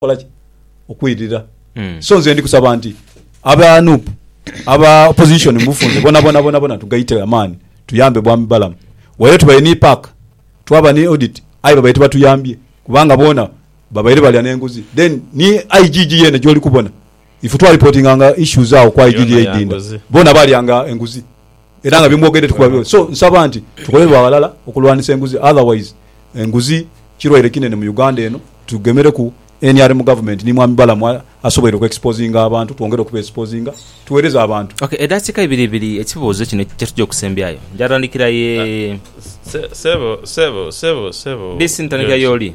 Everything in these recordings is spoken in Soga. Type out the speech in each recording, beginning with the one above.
kukola ki? Okwirira. So nze ndi kusaba nti aba nup aba opposition mubufunze bonabona bonabona tugaite amaani tuyambe bwami Balamu waire tubaire ni paaka twaba ni audit aye babaire tibatuyambye kubanga boona babaire balya nenguzi then ni IGG yeene gyoli kubona Ife twalipotinga nga issues agho kwa Ididi Eidinda bona balya nga enguzi era nga byemwogedde tikuba byo so nsaba nti tukole lwa ghalala okulwanisa enguzi otherwise enguzi kirwaire kinene mu Uganda eno tugemereku nrm government ni mwami Balamu asoboire oku exposinga abantu twongere okuba exposinga tuwereze abantu. Ok edakika ibiri ibiri ekibuzo kino kyetuja okusembyayo njatandikira ye. Sebo sebo sebo sebo. Disi ntandikira yoli.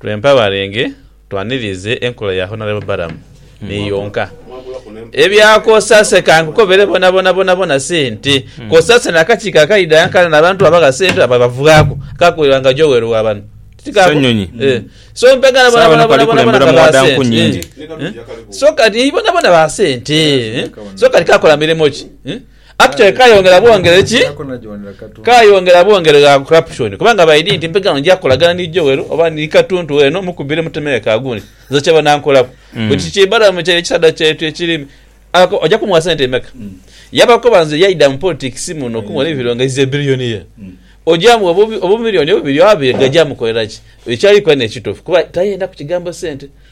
Twempa balenge twanirize enkola ya Honourable Balaam ni yonka. Ebya Kosase kankukobere bonabona bonabona sente. Kosase nakakiiko akaidha nkanana abantu abo agha sente abo abavughaku kakuberwa nga Joel wa bano. Ssenyonyi. So mpegana bonabona bonabona nga ba sente. So kati bonabona ba sente. So kati kakola mirimo ki? Actually Aye kayongera kati bwongere ki? nziraku na gyondera katonda. Kayongera bwongere gha corruption kubanga by dint mpegano nja kolagana ni Joel oba ni Katuntu weno mukubire mutemere ka gundi nze kye banankolaku. But kiki balamu kye kisadha kyetu ekiri ako oja kumuwa sente emeka? Yaba akoba nze yaida mu politics muno okumugha ne bironge he's a billionaire. Oja muwa obu obu million obubiri oba abiri gaja mukolera ki? Ekyali kola ne kitufu kuba tayenda ku kigambo sente.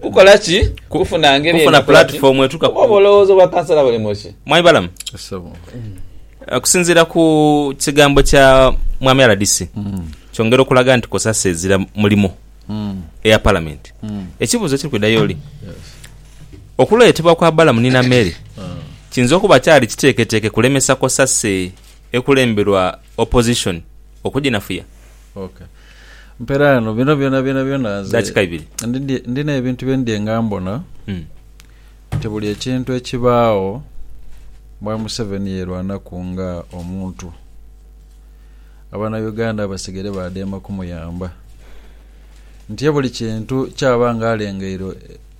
Kukola ki? Kufuna ngeri Kufuna eno kulati platifoomu etuuka ku- oba obulowooza obwa kansala buli mu ki? Mwami Balamu, Ssebo. okusinziira ku kigambo kya Mwami rdc kyongera okulaga nti Cosase ezira mulimu eya Palamenti. Ekibuuzo ekiri kwidha y'oli, okuleetebwa kwa Balamu ni Namere kiyinza okuba kyali kiteeketeeke kulemesa Cosase ekulemberwa Opposition okuginafuya? Okay. Mpera ghano bino byona byona byona nze Dakika ibiri. ndidye- ndina ebintu bye ndidye nga mbona Mm. nti buli ekintu ekibaagho bwa Museveni yerwanaku nga omuntu abana Uganda basigere badheema kumuyamba nti ye buli kintu kyaba nga alengeire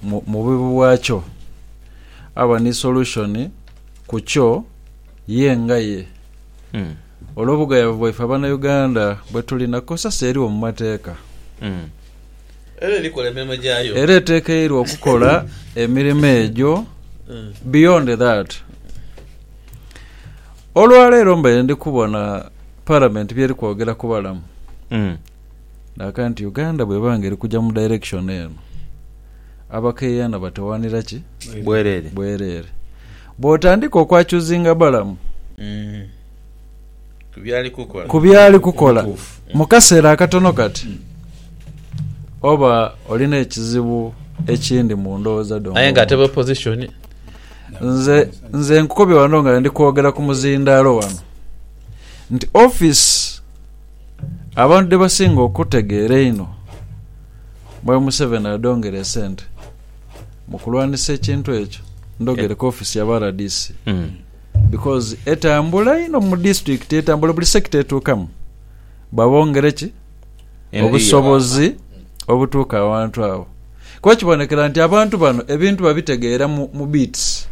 mu- mu bubi bwakyo aba ni solution kukyo ye nga ye. Mm. olw'obughayavu bwaife Abanauganda bwe tuli na kosasi eriwo mu mateeka Era erikola emirimo gyayo. era etekeirwa okukola emirimo egyo beyond that olwaleero mbaire ndi kubona Parliament byeri kwogera ku balamu Naaka nti Uganda bweba nga erikuja mu direction eno, abakeyana batawanira ki? Bwerere. Bwerere. Bwotandika okwa choosinga Balamu ku byali kukola mu kaseera akatono kati, oba olina ekizibu ekindi mu ndowooza dho Aye nga ate ng'omuntu. opposition. Nze nze nkukobye wano nga ndi kwogera ku muzindaalo wano nti office Abantu dhebasinga okutegeera einho mwe Museveni adhongera esente mu kulwanisa ekintu ekyo ndhogereka office ya ba rdc because etambula inho mu district etambula buli sector etuukamu babongere ki obusobozi obutuuka awantu awo kuba kibonekera nti abantu bano ebintu babitegeera mu mu bits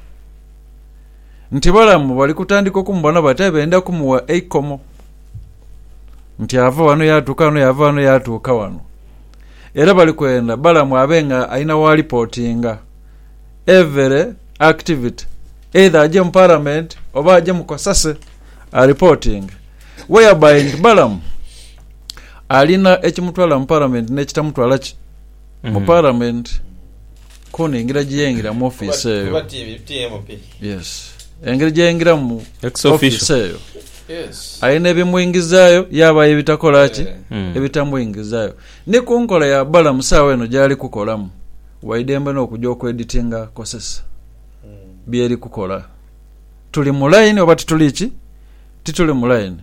nti balamu bali kutandika okumubona bati aye benda kumuwa eikomo nti ava wano yatuuka wano yava wano yatuuka wano era bali kwenda balamu abe nga alina walipotinga every activity either aje mu parliament oba aje mu kasase alipotinge whereby nti balamu alina ekimutwala mu parliament nekitamutwala ki mu Palamenti kona engira gye yaingira mu ofiisi eyo. Yes. Engeri gye yaingiramu ofiisi eyo alina ebimwingizaayo yabaayo ebitakola ki, hmm. ebitamwingizaayo. Ni ku nkola ya bala mu saawa eno gyali kukolamu, waidembe n'okuja okweditinga kozesa hmm. byeri kukola. tuli mu line oba tituli ki? Tituli mu line.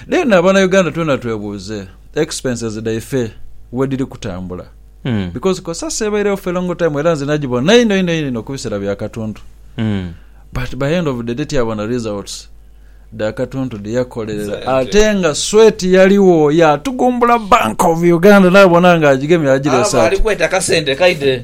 Then abana Uganda twena twebuuze expenses dhaife wedhiri kutambula Mm. because cosase ebairegho for a long time era nze nagibona inho inho inho inho kubisera bya katuntu Mm. but by end of the day tyabona results dha katuntu dheyakolerera Sente. ate nga sweat yaliwo yatugumbula bank of uganda nabona nga agigemye agira Aba ali esaati kweta kasente kaidhe.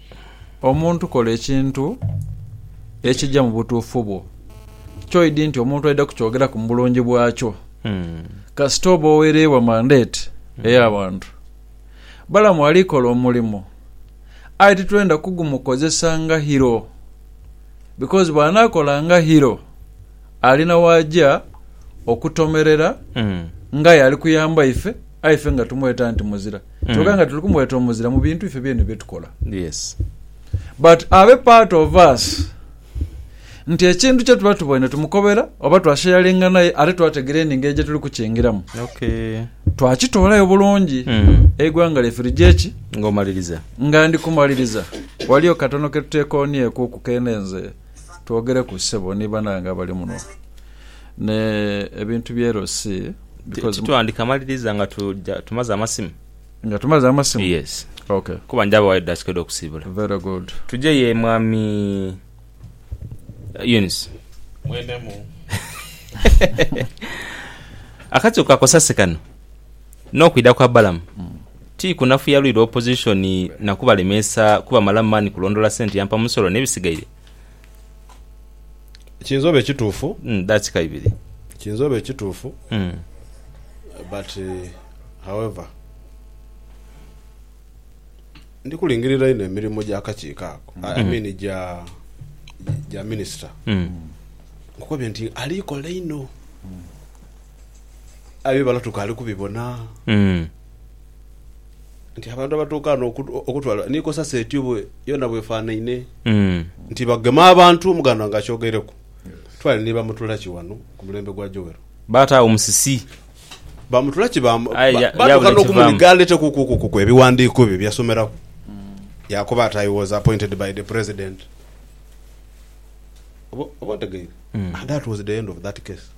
Omuntu kola ekintu ekija mu butuufu bwo. Kyoidhi nti omuntu aidha kukyogeraku mu bulungi bwakyo. Kasita oba owereibwa mandate ey'abantu. Balamu ali kola omulimo aye titwenda kugumukozesa nga hero because bw'anaakola nga hero alina w'aja okutomerera ng'aye ali kuyamba ife aye ife nga tumweta nti muzira. kyoka nga tuli kumwetomozera mu bintu ife byene byetukola. Yes. But abe part of us nti ekintu kyetuba tuboine tumukobera oba twashayalinga naye ate twategera eningeri gyetuli kukingiramu. Okay. Twakitoolayo bulungi mm. eigwanga lyaife ligyeki ngomaliriza nga ndi kumaliriza waliyo katono ketutekonyeku ku kene nze twogereku sebo ni banange abali muno Ne ebintu bye Erosi because. Titwandika maliriza nga tumaze amasimu. Nga tumaze amasimu? Yes. Ok. Kuba nja bawayo edakika edho kusibula. Very good. Tuje ye mwami Eunice. Mwene mu. Akatiko ka Kosase kano no kwidha kwa Balaam ti kunafuya lwi lwa opposition na kubalemesa kuba malamu mani kulondola sente yampa musolo ne bisigaire. Kiyinza oba ekituufu. Mm dakika ibiri. Kiyinza oba ekituufu but however ndi kulingirira inho emirimu gya kakiiko ako I mean gya gya minisita nkukobye nti ali kola inho. aye bibala tukaali kubibona nti abantu abatuuka ghano okutwala ni konsaseti yona bwefanhaine nti bagema abantu omuganda wange akyogeireku twale ni bamutulaki ghano ku mulembe gwa Joel. Baataagho musisi. Bamutulaki baatuuka n'okumuniga aleetekukuku ebiwandiiko bye bye yasomeraku yaakoba ati, I was appointed by the President. Oba otegeire? And that was the end of that case.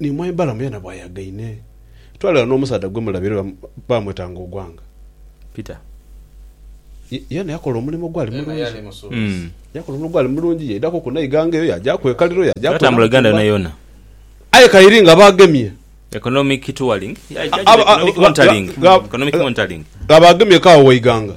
Ni mwai Balamu yena bwayagaine. Twalira n'omusaadha gwe mulabye era baamwetanga Ogwanga. Peter. Yena yakola omulimo ogwali mulungi. Yakola omulimo ogwali mulungi, yaidhaku ku Naiganga eyo, yaagyaku e Kaliro, yaagyaku e Namutumba. Yaatambula Uganda yona yona. Aye kairi nga baagemye. Economic touring, economic monitoring, economic monitoring. Gha baagemye kaawo Waiganga.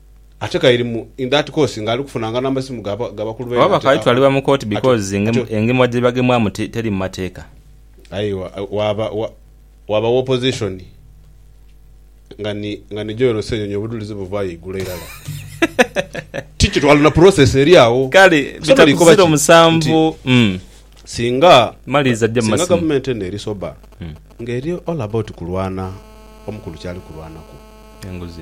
Ate kairi mu in that course nga ali kufunanga namasimu ga bakulu baine. Oba bakaali twalibwa mu kooti because engemwa jebagemwamu teri mumateeka. Aye waaba waaba wa opposition nga ni nga ni Joel Ssenyonyi obudhulizi buvaayo eigulu irala. Ti kitwalo na process eri agho. Kale bita ku ziro musanvu uhmm. Singa Maliriza jja mu masimu. Singa government eno eri sober nga eri all about kulwana omukulu kyali kulwanaku. Enguzi.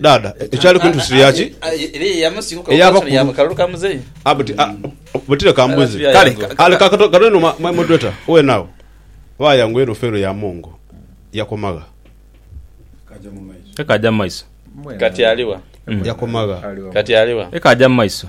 Dhaadha, ekyali kuntuusirira ki? Eyava ku lu. Buti, a, buti leka mbuuze. Kale, a, leka kato, katono inho, my moderator, weena agho. Waaya ngoye eno feero ya Mongo yakoma gha? Eka aja mu maiso. Yakoma gha? Eka aja mu maiso.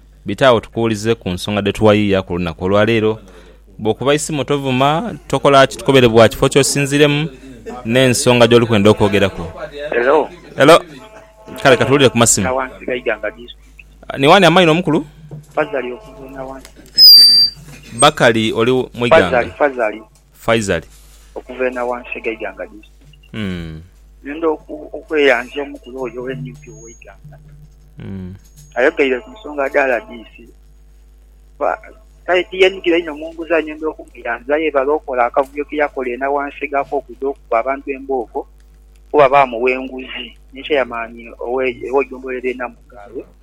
Bite agho tukuwulize ku nsonga dhe tuwayiya ku lunaku olwa leero. Bw'okuba isimu tovuma, tokola ki, tukobere bwa kifo ky'osinziiremu n'ensonga gy'oli kwenda okwogeraku. Hello. Hello. Kale ka tuwulire ku masimu. Ni wani amaino mukulu? Bakali oli Muiganga? Faizal. Okuva e Nawansi ghe Iganga Disitulikiti, ngenda okweyanzya omukulu oyo owe nup owe Iganga. Ayogeire ku nsonga dha rdc. Kale tiyenhigira inho mu nguzi aye ngenda okumweyanzya yebale okola akavuyo ke yakola e Nawansi ghe akokudha okukuba abantu embooko kuba baamugha enguzi ni chairman owe gombolola erye Namugabe.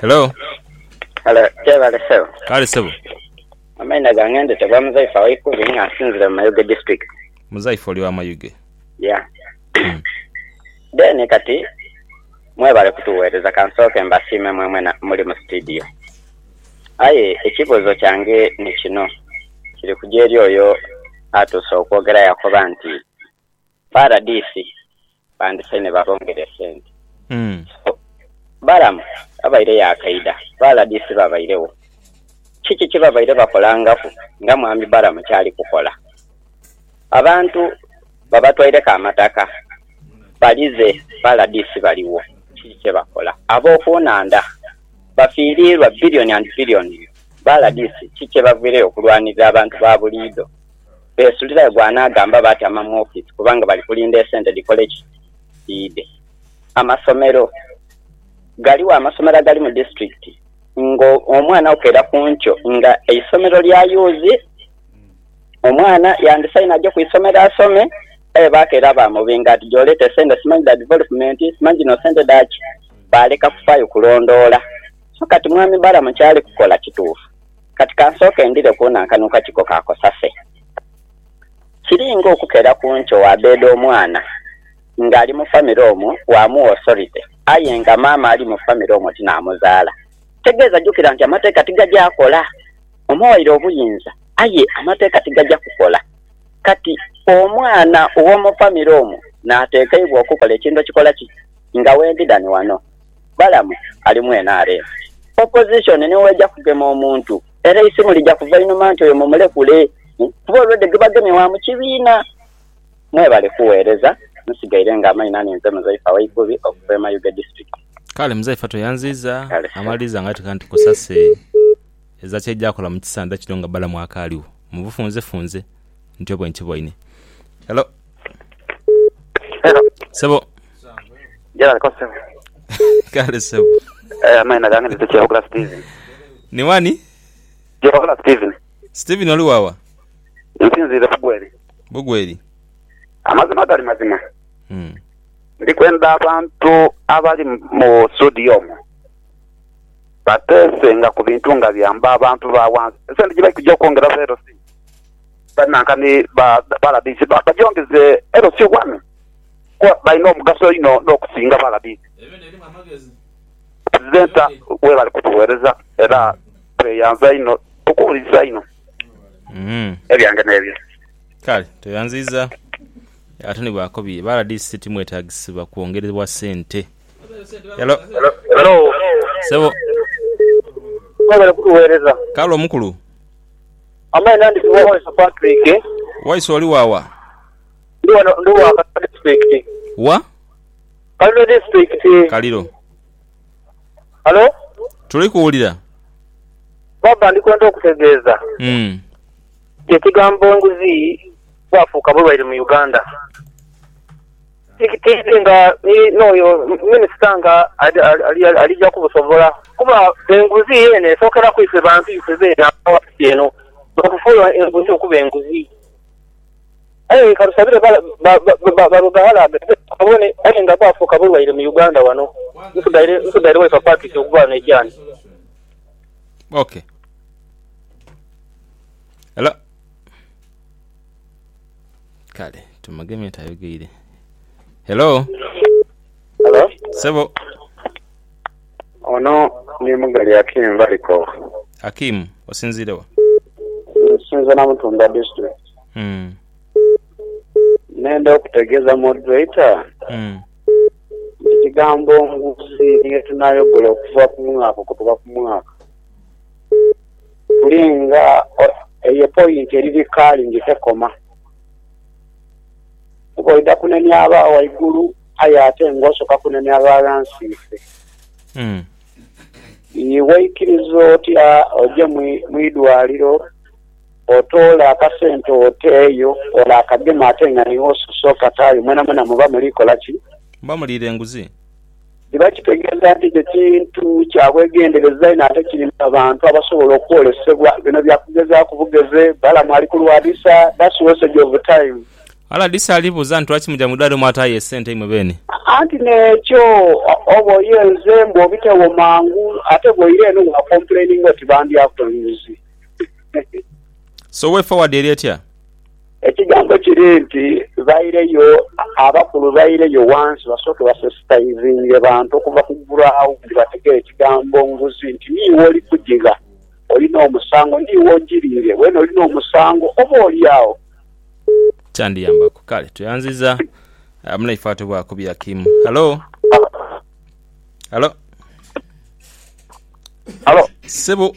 Hello. Hello, kyebale sebo. Kale sebo. Amaina gange ndetebwa Muzaifa Waikubi nga nsinzire mu Mayuge district. Muzaifa oli wa Mayuge. Yeah. Then kati mwebale kutuwereza kansooke mbasiime mwemwena muli mu studio. Aye ekibuuzo kyange ni kino kiri kuja eri oyo atuuse okwogera yakoba nti Paradisi bandise ni babongera esente so balamu babaire yakaidha paradisi babaire wo kiki kyebabaire bakolangaku nga mwami balamu kyali kukola abantu babatwaireku amataka balize paradisi baliwo kiki kyebakola abokunandha bafirirwa billion and billions paradisi kiki kyebavireyo okulwanirira abantu babuliidho. Beesulirayo gw'anaagamba baatama mu ofiisi kubanga bali kulinda esente dhikole ki? Dhiidhe. Amasomero. Ghaligho amasomero agali mu disitulikiti ng'omwana okeera ku nkyo nga eisomero lyayuuzi, omwana yandisaine aje ku isomero asome aye baakeera baamubinga ati gy'oleeta esente simanyi dha divolopumenti, simanyi dhino sente dha ki? Baaleka kufaayo kulondoola. So kati Mwami Balaam ky'ali kukola kituufu? Kati ka nsooke ndhire ku nankanuka kiko ka Kosase. Kiri ng'okukeera ku nkyo waabeeda omwana ng'ali mu famire omwo waamugha osorite, aye nga maama ali mu famire omwo ti naamuzaala. Tegeeza jukira nti amateeka tigaja kola. Omuwaire obuyinza, aye amateeka tigaja kukola. Kati omwana ow'omu famire omwo naatekeibwa okukola ekintu ekikola ki? Nga wendi dhani wano. Balamu ali mu nrm. Opposition ni weja kugema omuntu era eisimu lija kuva inhuma nti oyo mumulekule kuba already gwebagemye wa mu kibiina. Mwebale kuweereza. Nsigaire nga Amaina ninze Muzaifa Waigubi okuva e Mayuge District. Kale Muzaifa tweyanziiza. Amaliriza nga ateeka nti Cosase eza ky'ejakola mu kisandha kino nga Balamu akaaligho. Mubufunzefunze ntyo bwenkiboine. Hello. Hello. Sebo. Gerard Kosebo. Kale sebo. Eh, amaina gange nite Kyehogla Steven. Ni wani? Kyehogla Steven. Steven oli wawa? Nsinziire Bugweri. Bugweri. Amazima gali mazima. Hmm. Ndi kwenda abantu abali mu studio omwo bateese nga ku bintu nga byamba abantu ba wansi. Esente gye bali kugya okwongera leero si Banankani ba balabirizi bajongize LC one kuba balina omugaso inho n'okusinga balabirizi. Purizenta webale kutuwereza era tweyanza inho tukuwuliriza inho. Ebyange n'ebyo. Kale tweyanziiza ate ni bwakobye ba rdc timwetagisibwa kwongerebwa sente. Hello. Hello. Sebo. Mwebale kutuwereza. Kale omukulu. Amaina ndi Waiso Patrick. Waiso oli waawa? Ndi wano ndi wa Kaliro district. Wa? Kaliro district. Kaliro. Halo? Tuli kuwulira. Baba ndi kwenda okutegeeza. Mm. Ekigambo enguzi bwafuuka bulwaire mu Uganda. Tiidhi nga ni n'oyo minisita nga alija kubusobola, kuba enguzi yeene esookera ku ife bantu ife beene abava ku nsi eno, n'okufuula enguzi okuba enguzi. Aye ka tusabire barughalaaghe babone, aye nga bwafuuka bulwaire mu Uganda wano, nsigaire waife Patrick okuba wano ekyani. Ok. Hello. Kale tumugemye nti ayogeire. Hello. Hello. Sebo. Ono ni Mugali Akim Valiko. Akim, osinziire wa? Nsinza Namutumba district. Mm. Nenda okutegeza moderator Mm. nti kigambo nguzi niyo tunayogola okuva ku mwaka okutuka ku mwaka. Ndi nga eyo epointi eri bikalingi tekoma, kuba oidha kunenia aba waigulu aye ate nga osoka kunenia aba ghansi ife. Ii, Waikiriza otya oje mu idwaliro otoole akasente oteeyo ole akageme ate nga niiwe osose okataayo? Mwenamwena muba muli kola ki? Muba muliira enguzi. Ni bakitegeeza nti ekyo kintu kya bwegendereza inho ate kirimu abantu abasobola okwolesebwa. Bino bya kugezaaku bugeze. Balamu ali ku lwadisa, that's wastage of time. Aladisa ali buuza nti lwaki muja mu idwaliro mwataayo esente imwe beene? Anti n'ekyo oba oyenze mbu obitewo mangu ate bw'oira eno wa complaininga oti bandyaku enguzi. So way forward eri etya? Ekigambo kiri nti baireyo, abakulu baireyo ghansi basooke basensitaizinge bantu okuva ku gulaawo buli bategere ekigambo nguzi nti niiwe oli kugigha, oli n'omusango, niiwe ogiriire, weena oli n'omusango oboolyawo. Kyandiyambaku. Kale tweyanziza munaife atubwa ku bya kimu. Halo. Halo. Halo. Sebo.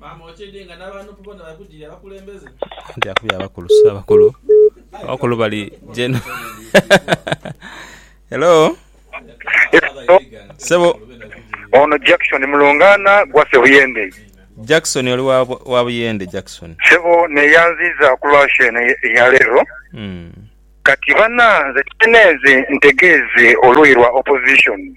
Maama okyedhie nga nabanup bona bali kujirya bakulembeze. Anti akubye abakulu so abakulu abakulu bali jeno hello sebo Ono Jackson mulungaana gwa Sebuyende. Jackson oli wa Buyende Jackson. Sebo neyanziiza ku lwa show eno eya leero. Kati bana nze kyene nze ntegeeze oluuyi lwa opposition.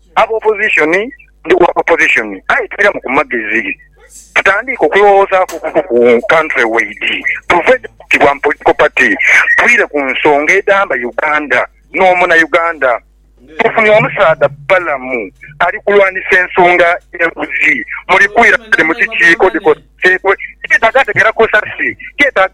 Aba opposition ndi wa opposition aye tuiramu ku magezi tutandiike okulowoozaaku okuku ku country wide tuve ku bwa political party twire ku nsonga edhamba Uganda no muna Uganda. Tufunye omusaadha Balamu ali kulwanisa ensonga ye nguzi muli kwira dho mu kikiiko dhikoseibwe kyetaaga ategera kozasi kyetaaga.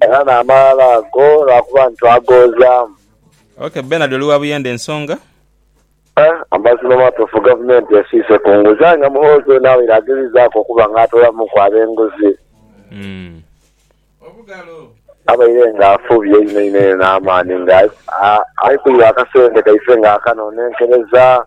Era n'amalala ago lwakuba nti twagoozaamu. Ok Bernard oli wa Buyende ensonga? Eh amazima matuufu gavumenti esiise ku nguzi aye nga Muhoozi ono abaire agezezaku okuba nga atoolamuku abenguzi abaire nga afubye einho inho inho n'amaani nga aikuirwa akasente kaife nga akano nenkereza.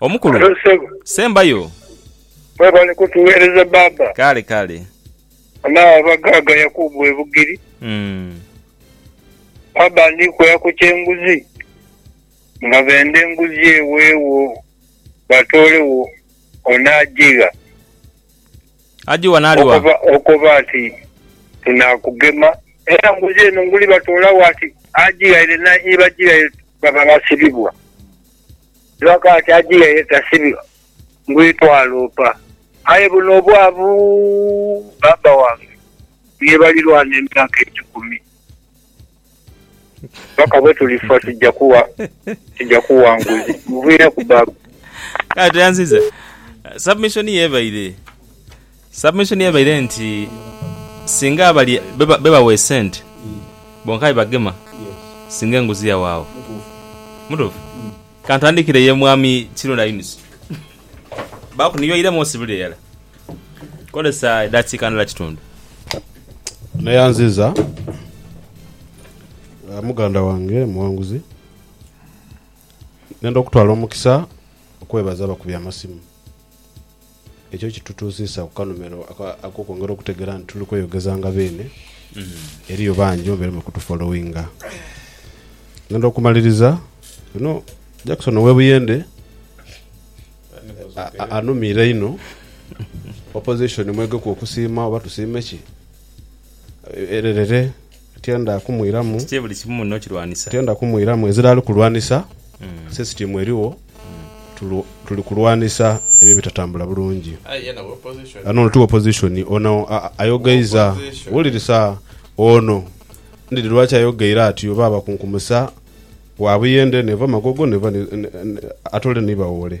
Omukulu. Halo ssebo. Sembayo. Webale kutuwereza bbaabba. Kale kale. Ana abagaaga Yakubu e Bugiri. Bbaabba ndi kwea ku ky'enguzi nga benda enguzi eweewo batoolewo ono agigha. Agigha n'ali wa? Okoba ati tunaakugema era nguzi eno nguli batoolawo ati agighaire n'aibagighaire baba basibibwa. Lwakati ajiya ye tasibi ngwi twaloopa. Aye buno obwavu baaba wange niye balirwana emyaka ekikumi paka bwetulifa tuja kuwa tuja kuwa nguzi. Muviireku baaba. Kale tweyanziza submission yo ebaire. Submission ye ebaire nti singa abali be bawa esente bonka be bagema singa enguzi yawaagho. Mutuufu? Kantandikire ye Mwami Kirunda Eunice. Baaku niyo eiremu osibire irala. Kozesa edaakiika ndala kitundu. Neyanziza muganda wange Muwanguzi nenda okutwala omukisa okwebaza abakubi amasimu. Ekyo kitutuusiisa ku kanhumero ak'okwongera okutegeera nti tuli kweyogeza nga beene. Eriyo bangi mubaire muli kutufolowinga. Ngenda okumaliriza bino. Jackson ow'e Buyende anumiire inho. Opposition mwegeku okusiima oba tusiime ki? Ererere. Tienda kumwiramu. Kiki buli kimu muno kirwanisa? Tienda kumwiramu. Ezira ali kulwanisa, sisitiimu erigho, tuli kulwanisa ebyo ebitatambula bulungi. Ghano ono ti wopozishoni. Ono ayogaiza. Wulirisa, ono ndidhi lwaki ayogeire atyo oba abakunkumusa wa buyende, neeva magogo, neeva ni, ni, ni, atole ni bawoole.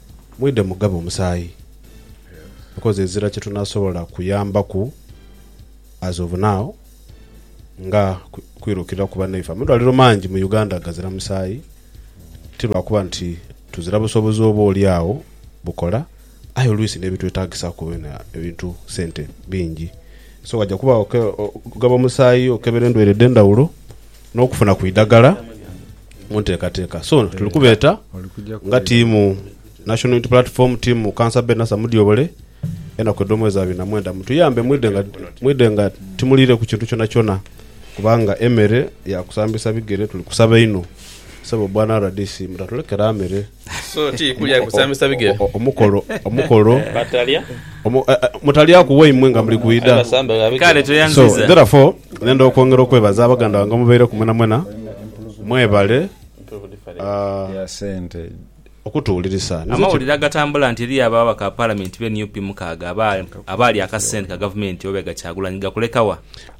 Mwidhe mugabe omusaayi because ezira kyetunasobola kuyambaku as of now nga kwirukira ku banaife. Amadwaliro mangi mu Uganda gazira musaayi ti lwakuba nti tuzira busobozi oba olyagho bukola aye oluisi n'ebitwetagisaku byona ebintu sente bingi so waja kuba okugaba omusaayi okebera endwaire edhendhaghulo. n'okufuna ku idhaggala mu nteekateeka. So tuli kubeeta nga tiimu National Unity Platform, tiimu Councillor Ben Nasser Mudyobole, enaku edh'omwezi abiri na mwenda mutuyambe mwidhe nga mwidhe nga timuliireku kintu kyonakyona kubanga emere ya kusambisa bigere tuli kusaba inho. Ssebo Bwana rdc mutatulekere amere. So ti kulya kusambisa bigere. Omukolo, omukolo, Batalya. omu, eh, eh, mutalyaku waimwe nga muli kwidha. Abasamba ba bigere. Kale So, tweyanziza. therefore, nenda okwongera okwebaza abaganda bange omubaireku mwenamwena. Mwebale ah, ya sente. okutuwulirisa. Nze kye- Amawulire agatambula nti eriyo ababaka ba palamenti be nup mukaaga aba- abaalya akasente ka gavumenti oba ega Kyagulanyi gakulekawa.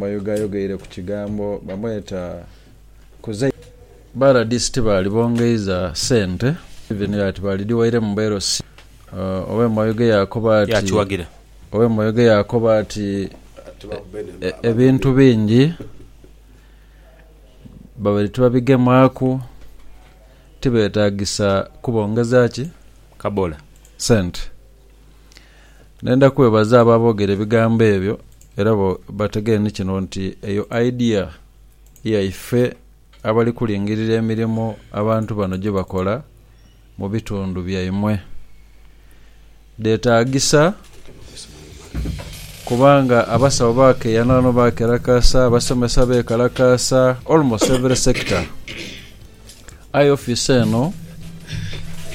Mayuge ayogeire ku kigambo bamweta Kuzei. Ba rdc tibaali bongeiza sente even ati baalidhiwaire mu blc. Ow'e Mayuge yaakoba ati Ow'e Mayuge yaakoba ati ebintu bingi babaire tibabigemaaku, tibeetaagisa kubongeza ki sente. Nenda kwebaza abo aboogera ebigambo ebyo era bategere ni kino nti eyo idea ya ife abali kulingirira emirimo abantu bano gye bakola mu bitundu byaimwe. Dhetaagisa kubanga abasawo bakeeyana ghano bakerakasa, abasomesa beekalakasa, almost every sector. Aye ofiisi eno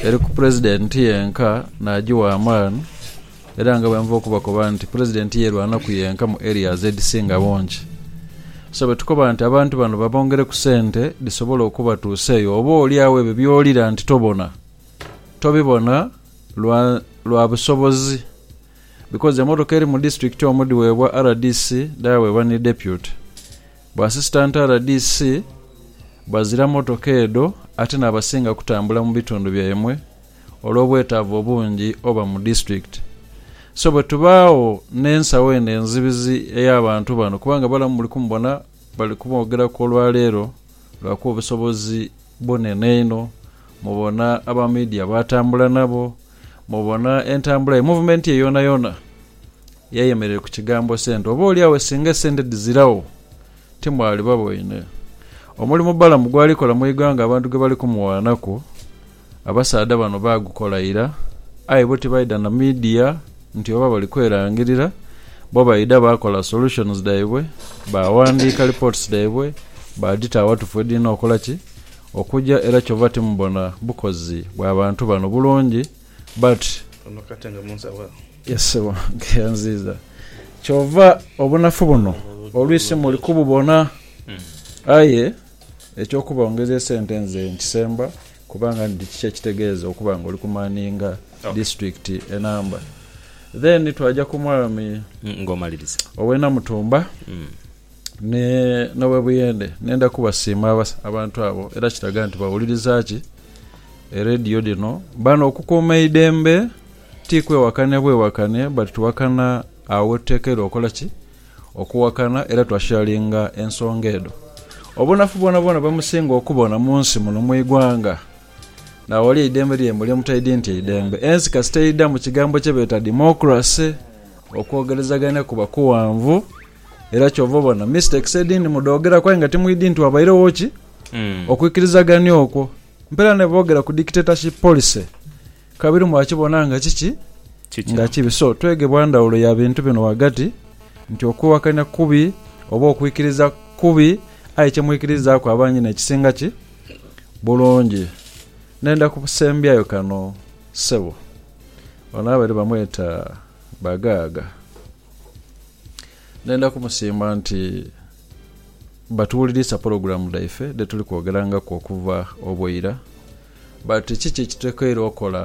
eri ku Pulezidenti yenka n'agiwa amaani era nga bwenva okubakoba nti Pulezidenti yeerwanaku yenka mu areas edhisinga bungi. So bwetukoba nti abantu bano babongereku sente dhisobole okubatuusa eyo oba olyagho ebyo by'owulira nti tobona, tobibona lwa lwa busobozi because emotoka eri mu disitulikiti omu dhiweebwa rdc dhaweebwa ni Deputy Ba Asisitanti rdc bazira mmotoka edho ate n'abasinga kutambula mu bitundu byaimwe olw'obwetaavu obungi oba mu disitulikiti. So bwe tubaagho n'ensawo eno enzibizi ey'abantu bano kubanga balamu muli kumubona bali kuboogeraku olwaleero lwakuba obusobozi bunene inho, mubona aba midia b'atambula nabo, mubona entambula ye muvumenti ye yoonayoona. Yayemerera ku kigambo sente. Oboolyawo singa esente dhiziragho, timwaliba boine. Omulimu Balamu gwali kola mu ighanga abantu ghe bali kumuwaanaku, abasaadha bano baagukola ira, aye bo tibaidha na midia nti oba bali kwerangirira. Bo baidha baakola solutions dhaibwe, baawandiika reports dhaibwe, baadhita awatufu we dhirina okola ki? Okuja. Era kyova timubona bukozi bwa bantu bano bulungi. But. Ono kati nga munsawo agho. Ye ssebo, nkeya nziiza. Kyova obunafu buno oluisi muli kububona. Aye eky'okuba ongeza esente nze nkisemba kubanga ndi kiki ekitegeeza okuba nga oli kumaninga disiturikiti enamba. Then twaja ku mwami ow'e Namutumba n'ow'e Buyende. Nenda kubasiima abantu abo era kiraga nti bawuliriza ki? Ereediyo dhino. Bano okukuuma eidembe Ti kwewakane bwewakane but tuwakana agho wetutekeirwa okola ki? Okuwakana era twa sharinga ensonga edho. Obunafu bwonabwona bwemusinga okubona munsi muno mwigwanga naghali eidembe lyaimwe lyemutaidhi nti eidembe ensi kasita eidha mukigambo kyebeeta democracy okwogerezagania kuba kughanvu era kyova obona mistakes edhindhi mudhogeraku aye nga timwidhi nti wabairegho ki? Okwikirizagania okwo. Mpela nebogera ku dictatorship policy Kabiri mwakibona nga kiki? Nga kibi. So, twegebwa ndhawulo ya bintu bino ghagati, nti okwiwakania kubi oba okwikiriza kubi, aye kye mwikirizaaku abangi n'ekisinga ki? Bulungi. Ndenda kusembyayo kano, ssebo. Ono abaire bamweta Bagaaga. Ndenda kumusiima nti batuwuliriisa pologulaamu dhaife dhe tuli kwogerangaku okuva obw'eira. But kiki ekitulekeire okola?